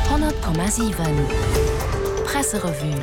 100,7 Presserevue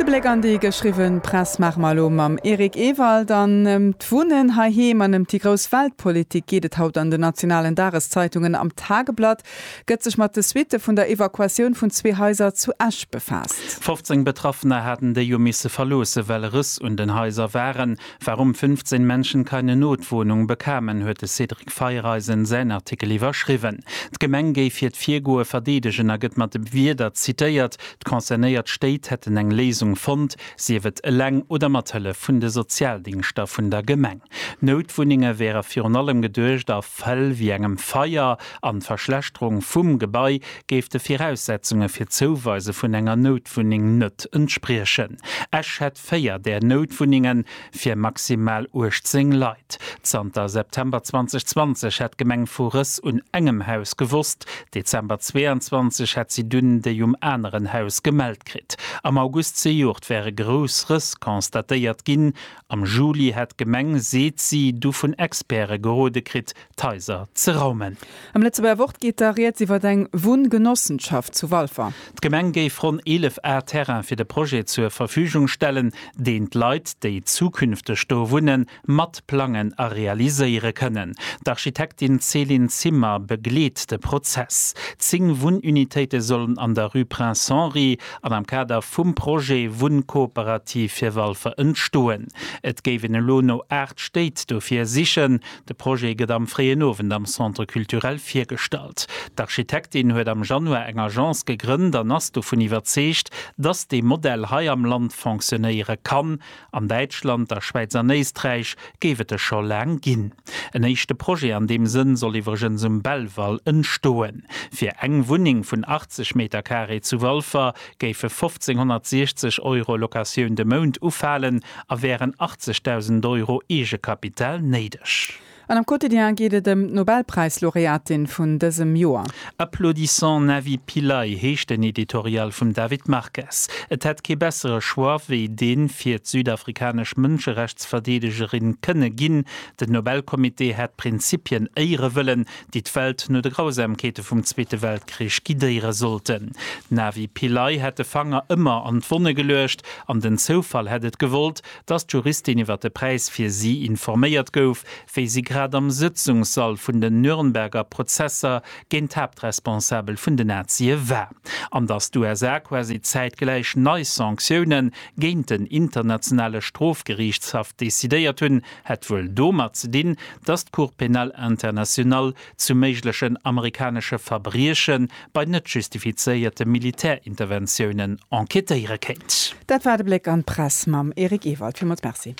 De Bléck an déi geschriwwen Press maache mer elo mam Eric Ewald. An ëm d'Wunnen heiheem an ëm déi grouss Weltpolitik geet et haut an den nationalen Dageszeitungen. Am Tageblatt gëtt sech mat de Suitte vun der Evakuatioun vun zwee Haiser zu Esch befaasst. 15 Betraffener haten déi jo misse verloossen, well Rëss un den Haiser waren. Warum 15 Menschen keine Notwohnung bekamen, huet de Cédric Feiereisen säin Artikel iwwerschriwwen. D'Gemeng géif hiert Virgoe verdeedegen a gëtt mat de Wierder zitéiert, d'concernéiert Stéit hätten eng Léisung fonnt, sief et eleng oder mat Hëllef vun de Sozialdingschter vun der Gemeng. D'Noutwunnenge wäre virun allem geduecht a Fäll wéi engem Feier an d'Verschlechterung vum Gebai géif de Viraussetzunge fir d'Zouweise vun enger Noutwunneng net entspriechen. Esch véier där Noutwunnenge fir maximal 18 Leit. Zanter September 2020 hätt d'Gemeng vu Rëss un engem Haus gewosst, Dezember 22 hätt si dunn déi um aneren Haus gemellt kritt. Am August zejoert wäre grouss Rëss constatéiert ginn. Am Juli hätt d'Gemeng, seet si, du vun Experte gerode kritt, d'Haiser ze raumen. Am Lëtzebuerger Wort geet da Rieds iwwer eng Wunngenossenschaft zu Walfer. D'Gemeng géif ronn 11 Ar Terrain fir de Projet zur Verfügung stellen, deen d'Leit, déi zukünfteg do wunnen, mat plangen a realiséiere kënnen. D'Architektin Céline Zimmer begleet de Prozess. Zéng Wunnunitéite sollen an der Rue Prince Henri an am Kader vum Projet Wunnkooperativ fir Walfer entstoen. Et géifen elo no 8 Stéit dofir sichen. De Projet gëtt am fréien Owend am Centre Culturel virgestallt. D'Architektin huet am Januar eng Agence gegrënnt an ass dovun iwwerzeegt, dass dee Modell hei am Land fonctionnéiere kann. An Däitschland, der Schwäiz an Éisträich géif et e scho laang ginn. En éischte Projet an deem Sënn soll iwwregens um Belval entstoen. Fir eng Wunneng vun 80 Metercarré zu Walfer géife 1.560 Euro Locatioun de Mount ufalen a wären 80.000 Euro Eegekapital néideg. An am Quotidien geet et ëm d'Nobelpräis-Laureatin vun dësem Joer. Applaudissant Navi Pillay heescht den Editorial vum David Marques. Et hätt kee bessere Choix wéi dee fir d'südafrikanesch Mënscherechtsverdeedegerin kënne ginn. Den Nobelcomité hätt Prinzipien éiere wëllen, déi d'Welt no de Grausamkeete vum Zweete Weltkrich guidéiere sollten. D'Navi Pillay hätt de Fanger ëmmer an d'Wonne geluecht an den Zoufall hätt et gewollt, datt d'Juristin iwwer de Präis fir si informéiert gouf, wéi si grad am Sëtzungssall vun den Nürnberger Prozesser géint d'Haaptresponsabel vun den Nazie war. An datt d'USA quasi zäitgläich nei Sanktioune géint den Internationale Strofgeriichtshaff decidéiert hunn, Hätt wuel domat ze dinn, datt d'Cour pénale internationale zu méiglechen amerikanesche Verbrieche bei net justifizéierte Militärinterventiounen enquêtéiere kéint. Dat war de Bléck an d'Press mam Eric Ewald. Villmools Merci.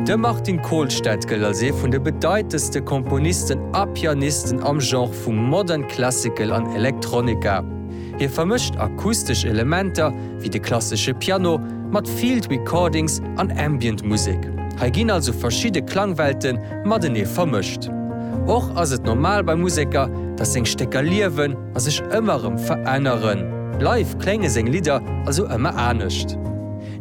De Martin Kohlstedt gëllt als ee vun de bedeitendste Komponisten a Pianisten am Genre vum Modern Classical an Electronica. Hie vermëscht akustesch Elementer, wéi de klassesche Piano, mat Field Recordings an Ambient Musek. Hei ginn also verschidde Klangwelte matenee vermëscht. Och ass et normal bei Museker, datt seng Stécker liewen a sech ëmmer erëm veränneren. Live klénge seng Lidder also ëmmer anescht.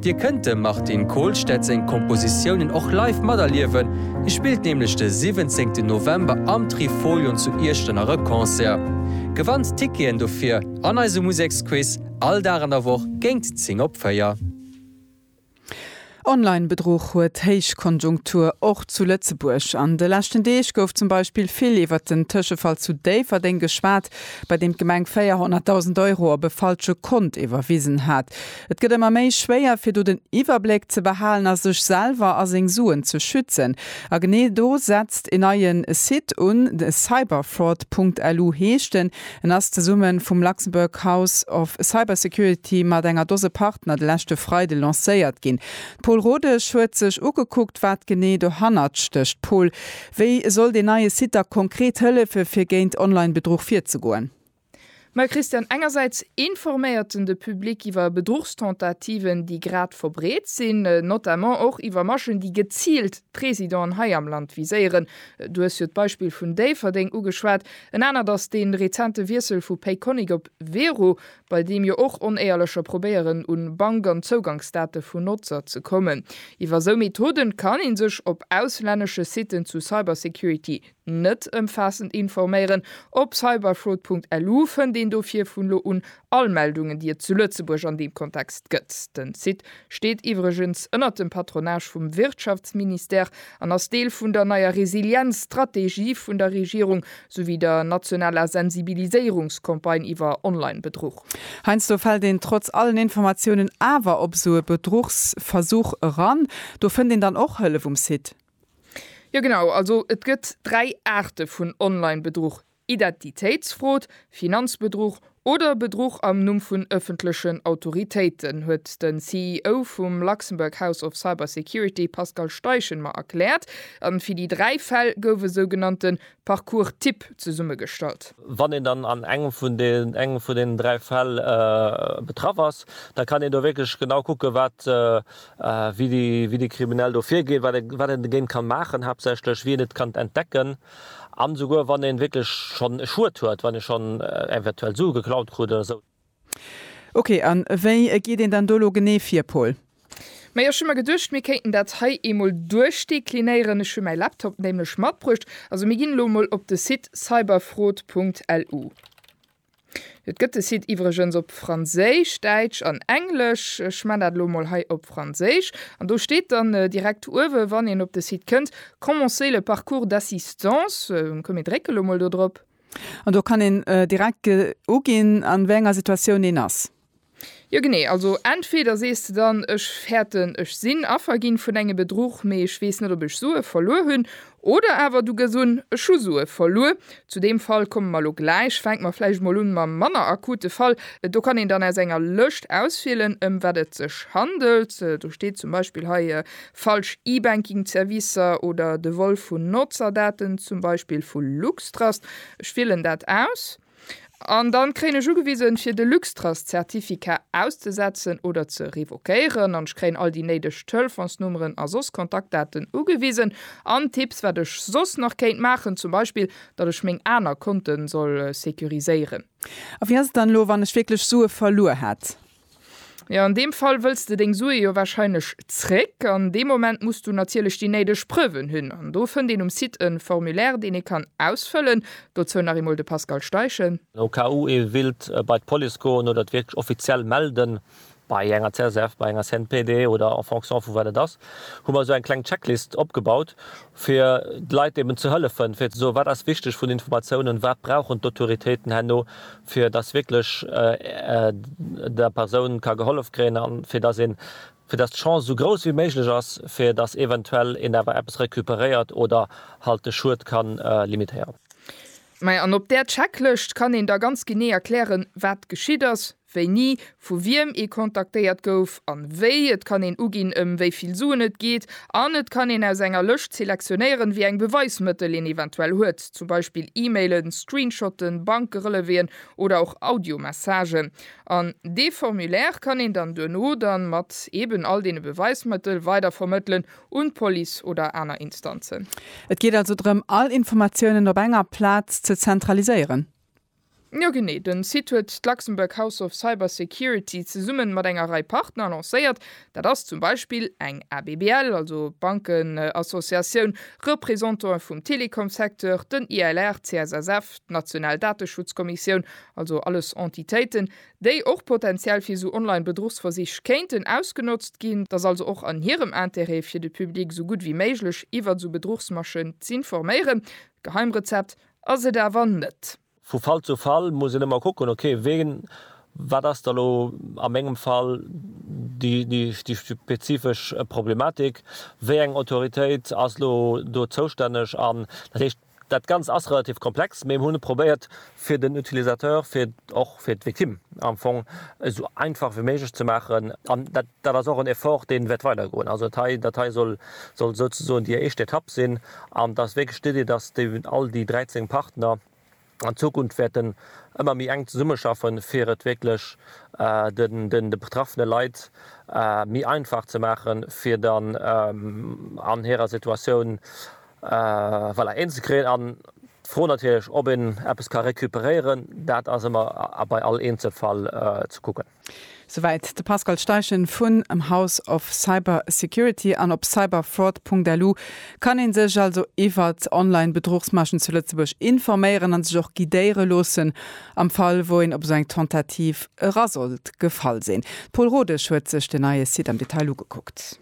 Dir kënnt dem Martin Kohlstedt seng Kompositiounen och live materliewen, hie spillt nämlech de 17 November am Trifolion zu Iechternach e Concert. Gewannt d'Ticketen dofir an eise Museksquiz, all Dag an der Woch géint 10 op 4. Online-Bedruch huet Héichkonjunktur, och zu Lëtzebuerg. An de leschten Deeg gouf zum Beispill vill iwwert den Tëschefall zu Déifferdeng geschwat, bei deem d'Gemeng 400.000 Euro op e falsche Kont iwwerwisen hat. Et gëtt ëmmer méi schwéier fir do den Iwwerbléck ze behalen a sech selwer a seng Suen ze schützen. A genee do setzt en neien Site un, cyberfraud.lu heescht en. En ass zesumme vum Luxembourg House of Cybersecurity mat enger Dose Partner de leschte Freide lancéiert ginn. D'Pol Rodesch huet sech ugekuckt wat genee dohannert stécht. Pol, wéi soll deen neie Site da konkret hëllefe fir géint Online-Bedruch virzegoen? Mme Christiane Engersäits, Informéiert den de Public iwwer Bedruchstentativen, déi grad verbreet sinn, notamment och iwwer Maschen, déi geziilt d'Présidenten hei am Land viséieren? Du hues jo d'Beispill vun Déifferdeng ugeschwat. En anert ass dee rezente Wiessel vu Payconiq op Wero, bei deem jo och Onéierlecher probéieren un Bank an Zougangsdate vun Notzer ze kommen. Iwwer esou Methoden kann ee sech op auslännesche Siten zu Cybersecurity Net ëmfaassend informéieren, Op cyberfraud.lu fënnt een dofir vun elo un all Meldungen, déi et zu Lëtzebuerg an deem Kontext gëtt. Den Site steet iwwregens ënnert dem Patronage vum Wirtschaftsministère an ass Deel vun der neier Resilienzstrategie vun der Regierung souwéi der nationaler Sensibiliséierungscampagne iwwer Online-Bedruch. Heiansdo fält een trotz allen Informatiounen awer op esou e Bedruchsversuch eran. Do fënnt een dann och Hëllef um Site. Jo genau, also et gëtt dräi Aarte vun Online-Bedruch, Identitéitsfrod, Finanzbedruch oder Bedruch am Numm vun ëffentlechen Autoritéiten, huet de CEO vum Luxembourg House of Cyber Security Pascal Steichen mer erkläert. A fir déi dräi Fäll gouf e sougenannte Parcours Typ zesummegestallt. Wann een dann an engem vun deenen dräi Fäll betraff ass, da kann een do wierklech genau kucken, wat wéi dee Kriminell do virgeet, wat een dogéint kann maachen, haaptsächlech wéi een et kann entdecken an esouguer wann een wierklech schonn e Schued huet, wann ee schonn eventuell Sue geklaut krut oder esou. Ok, an wéi geet een dann do elo genee vir, Paul? Majo, ech hu mer geduecht, mir kéinten dat hei eemol duerchdeklinéieren. Ech hu mäi Laptop nämlech matbruecht. Also mir ginn elo emol op de Site cyberfraude Punkt lu. Et gëtt de Site iwwregens op Franséisch, Däitsch an Englesch. Ech man dat elo mol hei op Franséisch. An do steet dann direkt uewe wann een op de Site kënnt, Commencer le parcours d'assistance. Komm mir drécke lo mol do drop. An do kann een direkt uginn an wéi enger Situatioun een ass. Jo genee, also entweder sees de dann, ech fäerten ech sinn Affer ginn vun engem Bedruch, mee ech weess net ob ech Sue verluer hunn, oder awer du gëss un, ech hu Sue verluer. Zu deem Fall komme mer elo gläich. Fänke mer vläicht emol un mam manner akute Fall. Do kann een dann aus enger Lëscht auswielen ëm wat et sech handelt. Do steet zum Beispill hei, falsch E-Banking Zerwisser oder de Vol vun Nozerdaten, zum Beispill vu Luxtrust. Ech wielen dat aus. An dann kréien ech ugewisen fir de Luxtrust Certificat auszesetzen oder ze revoquéieren an ech kréien all déi néideg Telefonsnummeren a soss Kontaktdaten ugewisen an Tipps wat ech soss nach kéint maachen, zum Beispill datt ech meng aner Konten soll securiséieren. A wéi ass et dann elo wann ech wierklech Sue verluer hätt? Jo, an deem Fall wëlls de deng Sue jo wahrscheinlech zréck. An deem Moment muss du natierlech déi néideg Preuven hunn. An do fënnt een um Site e Formulaire, deen ee kann ausfëllen. Dozou nach eemol de Pascal Steichen. Au cas où ee willt bei d'Police goen oder et wierklech offiziell melden, bei enger csv, bei enger CNPD oder en fonction vu wat et ass, hu mer esou eng kleng Checklist opgebaut, fir de Leit eben ze hëllefen, fir ze soen, wat ass wichteg vun Informatiounen, wat brauchen d'Autoritéiten herno, fir dass wierklech der Persoun ka gehollef kréien a fir dass een, fir dass d'Chance esou grouss wéi méiglech ass, fir dass eventuell een awer eppes recuperéiert oder halt de Schued ka limitéieren. Majo, an op där Checklëscht kann een da ganz genee erklären, wat geschitt ass, Wéini vu wiem ee kontaktéiert gouf an wéi. Et kann een uginn, ëm wéi vill Suen et geet an et kann een aus enger Lëscht selektionéieren, wéi eng Beweismëttel een eventuell huet, zum Beispill E-Mailen, Screenshotten, Bankereleveen oder och Audiomessagen. An dee Formulaire kann een dann duerno dann mat eben all deene Beweismëttel weidervermëttelen un d'Police oder aner Instanzen. Et geet also drëm, all Informatiounen op enger Plaz ze zentraliséieren. Jo genee, den Site huet d'Luxembourg House of Cyber Security zesummen mat enger Rei Partner lancéiert. Dat ass zum Beispill eng ABBL, also Bankenassociatioun, Représentanten vum Telekomsecteur, den ILR, CSSF, d'National Dateschutzkommissioun, also alles Entitéiten, déi och potentiell fir sou online Bedruchsversich kéinten ausgenotzt ginn. Et ass also och an hirem Intérêt fir de Public sou gutt wéi méiglech iwwert sou Bedruchsmaschen z'informéieren. Geheimrezept? Ass et awer net. Vu Fall zu Fall muss een ëmmer kucken, ok, wien, wat ass da lo a mengem Fall déi spezifesch Problematik, wéi eng Autoritéit ass lo do zoustänneg. An dat heescht, dat Ganzt ass relativ komplex, mee mir hu probéiert, fir den Utilisateur, fir och fir d'Victime am Fong esou einfach wéi méiglech ze maachen. An dat ass och en Effort, dee wäert weidergoen. Also dat hei soll souzesoen déi éischt Etapp sinn. An et ass wierklech d'Idee, dass all déi 13 Partner an Zukunft wäerten ëmmer méi enk zesummeschaffen, fir et wierklech de betraffene Leit méi einfach ze maachen, fir dann an hirer Situatioun een ze kréien. An d'Fro natierlech, ob een eppes ka recuperéieren, dat ass ëmmer bei all Eenzelfall ze kucken. Souwäit de Pascal Steichen vun em House of Cyber Security an op cyberfraud.lu kann een sech also iwwert online Bedruchsmaschen zu Lëtzebuerg informéieren an sech och guidéiere loossen am Fall wou een op esou eng Tentative era sollt gefall sinn. D'Pol Rodesch huet sech den neie Site am Detail ugekuckt.